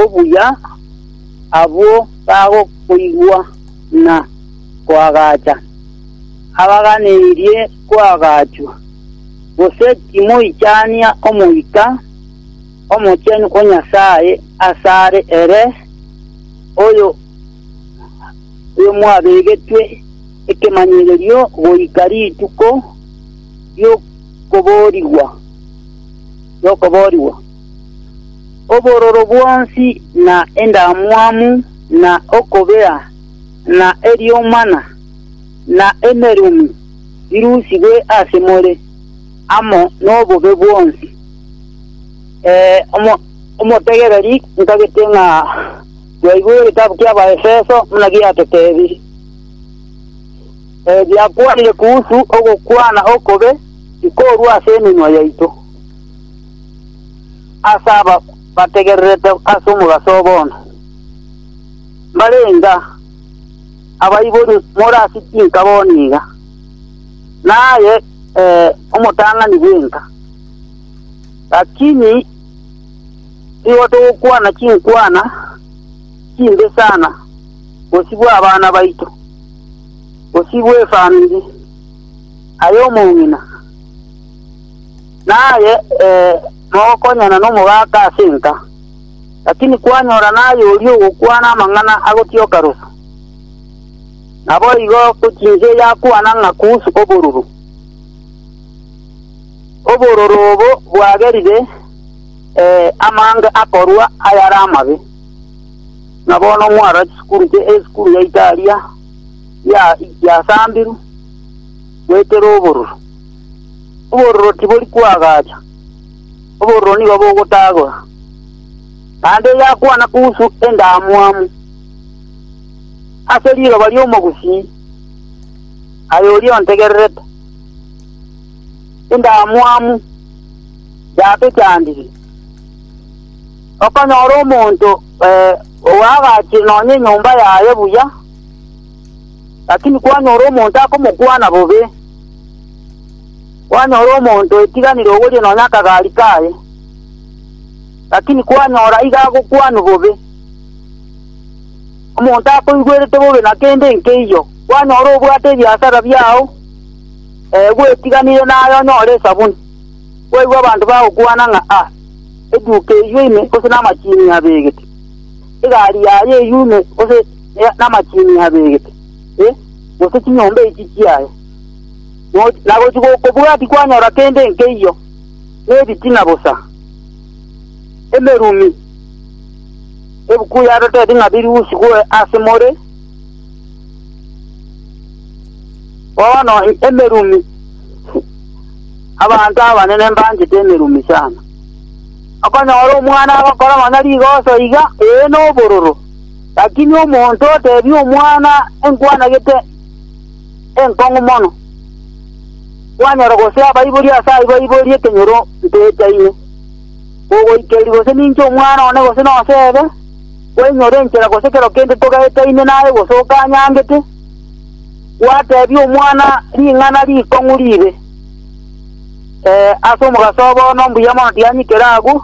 obuya abwo bagokoigwa na koagacha. Abaganeirie koagachwa, gose timoichania Omoika omochenu o Nyasae asare ere oyo mwabegetwe ekemanyererio goika rituko ri'okoboorigwa. Obororo bwonsi, na endamwamu, na okobea, na eriomana, na emerumi, birusigwe ase more, amo nobobe bwonsi. Ee, omo- omotegereri, ntagete ng'a bwaigure egetabu ki'Abaefeso buna giatotebirie. Ee, biakwanire kuhusu ogokwana okobe tikorwa ase emenwa yaito. ase aba bategererete ase omogaso oo bono. Mbare enga abaibori more ase chinka bono iga, na aye, ee, omotang'ani bw'enka. Lakini nigo togokwana chinkwana chimbe sana bosio bw'abana baito, bosio bw'efamiri, aye omong'ina. naye eh, mogokonyana nomogaka ase enka. Lakini kwanyora naye oria ogokwana amang'ana agotioka rufu. Naboigo gochinse yakwana ng'a kusu oboruru. Obororo obo bwagerire eh, amange akorwa ayare amabe. Na bono mwara chisukuru che esukuru ya Italia ya yasambiru gwekera oboruru. Obororo tibori kwagacha, obororo nigo bogotagora. Naende egakwana kuhusu endamwamu ase riroba ri'omogusii, aye oria ontegererete, Endamwamu yatochandire. Okonyora omonto ogaagachire nonya enyomba yaye buya. Lakini kwanyora omonto akomokwana bobe, kwanyora omonto oetiganire ogoria nonya akagaari kaye, lakini kwanyora aiga agokwanwa bobe, omonto akoigwerete bobe na kende nkeiyo, kwanyora obwate ebiasara biao ee gwetiganire naye onyore esabuni, kwaigwa abanto bagokwana ng'a a eduka eywo ime gose namachiinia abegete, egari yaye eywo ime gose ne namachiini abegete, e, gose chinyomba echi chiaye, noch nagochi gokobua tikwanyora kende nkeiyo, nebitina bosa, emerumi, ebuku yaroteti ng'a birusigwe ase more, bono emerumi, abanto abanene mbanchete emerumi sana. Okonyora omwana agokora nonya rigoso iga, ee, nobororo. Lakini omonto oteebia omwana, Enkwana gete enkong'u mono, kwanyora gose abaibori ase aibo aibori ekenyoro nteetaine, kogoikeria gose ninche omwana one gose noseebe, kwainyora enchera gose kero kende togaetaine naye gose okanyangete, gwateebia omwana ring'ana rikong'u riibe, ee, ase omogaso obo bono mbuya mono tianyikere agwo,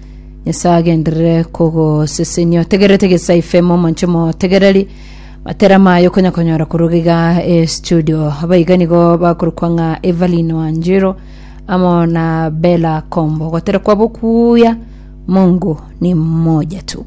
nyasae agenderere kogosesenia otegerete gesai fm omonche motegereri matera maye okonya konyora koruga iga e studio abaiga nigo bakorokwa ng'a evelyn wanjiro amo na bela kombo gotera kwabo kuya mungu ni mmoja tu